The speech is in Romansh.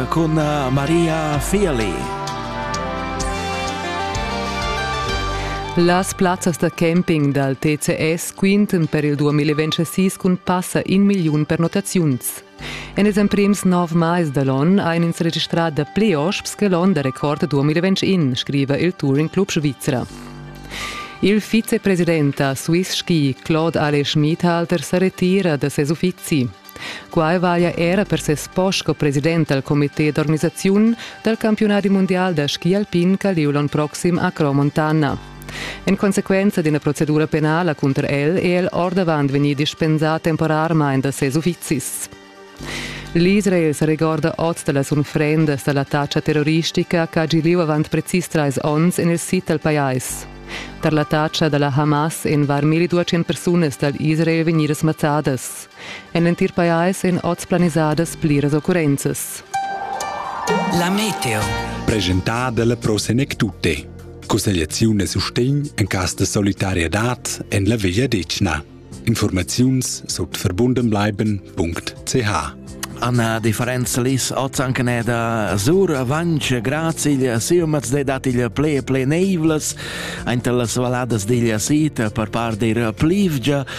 cun eh, Maria Fearli. Las plazzas da camping dal TCS quintan per il 2026 cun passa in milliun pernottaziuns. En ils emprims nov mais da l'onn ein ins registrà dapli osps che l'onn da record 2021, scriva il Touring Club Svizra. Il vicepresident da Swiss Ski, Claude Alle Schmidhalter, sa retira da ses uffizi. Quai valia era per ses post sco president dal comité d'organisaziun dal campiunadi mundial da ski alpin ch'ha lieu l'onn proxim a Cro Montana. En consequenza d'ina procedura penala cunter el è el ordavant vegnì dispensà temporarmain da ses uffizis. L'Israel sa regorda oz da las unfrendas da l'attacca terroristica ch'ha gì lieu avant precis trais onns en il sid dal pajais. Tar l'attacca da la Hamas èn var 1200 persunas dal Israel vegnidas mazzadas. En l'entir pajais èn oz planisadas pliras occurrenzas. La meteo. Presentada la Pro Senectute. Cussegliaziun e sustegn en cas de solidarietad en la Veglia Decna. Informaziuns sut verbundenbleiben.ch Anna di Ferenc Lis ozzancaneda sur avanc grazil siumats de datiglia ple ple neivlas ainter las valadas diglia sita per par dir plivgia